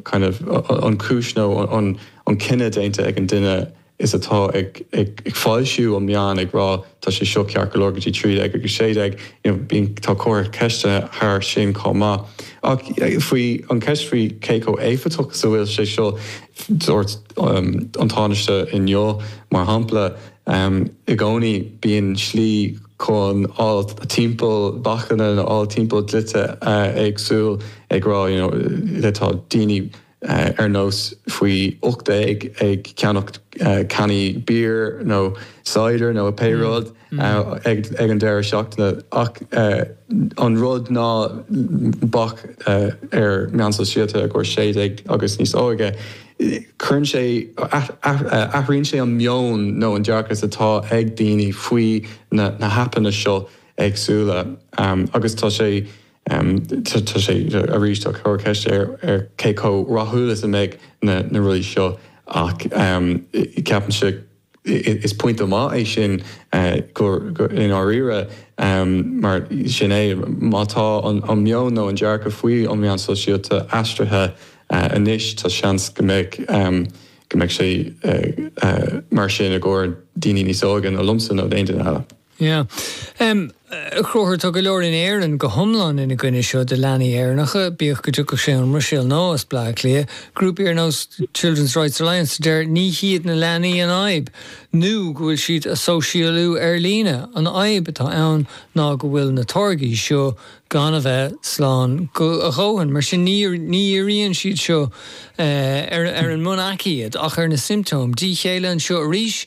kind of an chúis nó an cinneadh déanta ag an duine is atá ag foilsiú an mheáin ag rá tá sé seo ceart go leor go dtí trí déag agus sé déag you know bíonn tá comhartha ceiste thar sin chomh maith ach faoi an ceist faoi cé chomh éifeachtach is a bhfuil sé seo dúirt an Tánaiste inniu mar shampla I gcónaí, bíonn slí chun fáil timpeall bacanna nó fáil timpeall dlíthe éagsúil ag rá you know tá daoine ar nós faoi ocht déag ag ceannach cannaí beer nó cider nó pé rud ag an deireadh seachtaine ach an rud ná bac ar meáin sóisialta i gcomhair sé déag agus níos óige Athraíonn sé an meon nó an dearcadh atá ag daoine faoi na haipeanna seo éagsúla agus tá sé arís ag cur ceiste ar cé chomh rathúil is a mbeidh na rudaí seo ach ceapaimse Is pointe maith é sin i ndáiríre mar sin é. Má tá an meon nó an dearcadh faoi na meáin sóisialta athraithe anois tá seans go mbeidh go mbeidh sé mar sin i gcomhair daoine níos óige ná liomsa nó d'aon duine eile. Yeah. Um, a Chonchubhair, tá go leor in Éirinn go hiomlán ina choinne seo do leanaí Éireannacha, bíodh go dtiocfadh sé ón mBruiséil nó as Bleá Cliath. Grúpaí ar nós Children's Rights Alliance a deir ní hiad na leanaí an fhadhb, nó go bhfuil siad ag sóisialú ar líne. An fhadhb atá ann ná go bhfuil na táirgí seo gan a bheith slán go, a dhóthain, mar sin ní, ní dhíríonn siad seo ar, ar an mbun-aicíd ach ar na symptoms, díth céille anseo arís,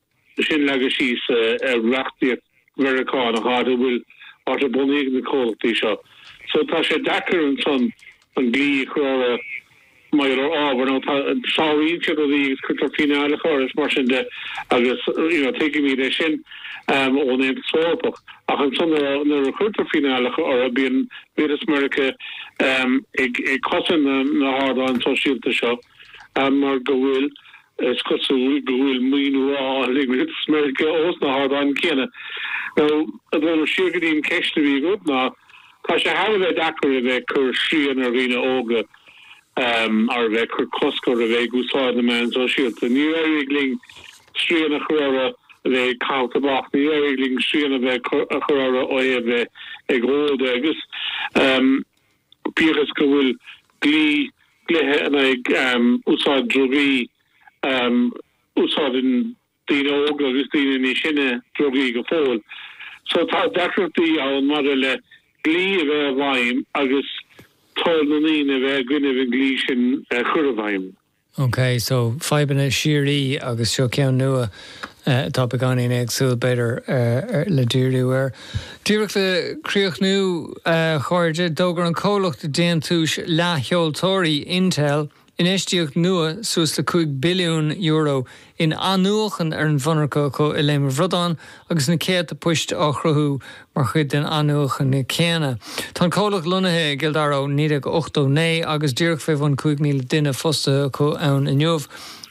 sin leagadh síos ar reachtaíocht Mheiriceánach áit a bhfuil áit ar bunaíodh na comhlachtaí seo. So tá sé deacair ansan an dlí a chur orthu maidir le ábhar nó tá, sáraíonn siad rudaí agus cuirtear fíneálacha orthu is mar sin de agus you know tuigimid é sin ón Aontas Eorpach ach ansan nuair a chuirtear fíneálacha orthu bíonn Rialtas Mheiriceá ag cosaint na na hardáin sóisialta seo mar go bhfuil Is cosúil go bhfuil maoiniú á fháil ag Rialtas Mheiriceá ós na hardáin céanna. Nó, ag dul siar go dtí an ceist a bhí agat, ná tá sé thar a bheith deacair a bheith ag cur srian ar dhaoine óga ar a bheith ag cur cosc orthu a bheith ag úsáid na meán sóisialta. Níor éirigh linn srian a chur orthu a bheith ag caitheamh tobac, níor éirigh linn srian a bheith a chur orthu ó thaobh bheith ag ól de agus. Bíodh is go bhfuil dlí, dlíthe in aghaidh úsáid drugaí, úsáideann daoine óga agus daoine níos sine drugaí go fóill. So tá deacrachtaí ann maidir le dlí a bheith i bhfeidhm agus toil na ndaoine a bheith i gcoinne an dlí sin a chur i bhfeidhm. OK, so fadhbanna síoraí agus seo ceann nua atá beagáinín éagsúil, b'fhéidir, le díriú air. Díreach le críochnú, a chairde, d'fhógair an comhlacht déantúis leathsheoltóirí Intel infheistíocht nua suas le €5 billiún in athnuachan ar an mhonarcha acu i Léim a' Bhradáin agus na céadta poist á chruthú mar chuid den athnuachan céanna. Tá an comhlacht lonnaithe i gCill Dara ó 1989 agus díreach fé bhun 5,000 duine fostaithe acu ann inniu.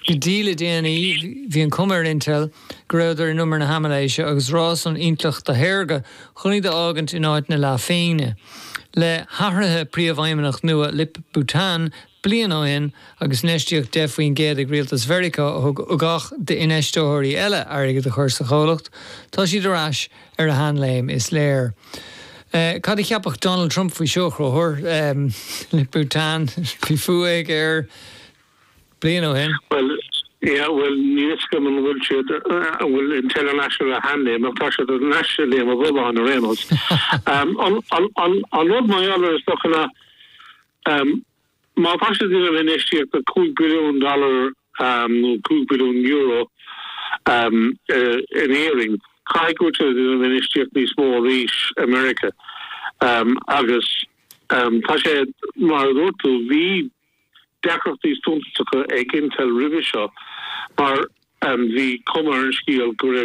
Go dtí le déanaí bhí an cuma ar Intel go rabhadar in umar na haimiléise agus rás an intleachta shaorga chun iad a fhágaint in áit na leathphingne. Le hathruithe príomhfheidhmeannach nua Lip-Bu Tan bliain ó shin agus infheistíocht 10 faoin gcéad ag Rialtas Mheiriceá a thug ugach d'infheisteoirí eile airgead a chur sa chomhlacht, tá siad ar ais ar a sheanléim, is léir. Cad a cheapfadh Donald Trump faoi seo, a Chonchúir? Lip-Bu Tan faoi fhogha aige bliain ó shin. Bhuel, yeah, bhuel, níl 'fhios agam an bhfuil siad, an bhfuil Intel ar ais ar a sheanléim ach tá siad ar ais i Léim an Bhradáin ar aon nós. An rud mar gheall air is dócha ná, má tá sé ag déanamh infheistíocht de $5 billiún nó €5 billiún in Éirinn, caithfidh go bhfuil sé ag déanamh infheistíocht níos mó arís i Meiriceá. Agus tá sé, mar a dúirt tú, bhí deacrachtaí suntasacha ag Intel roimhe seo mar bhí cuma ar an scéal go raibh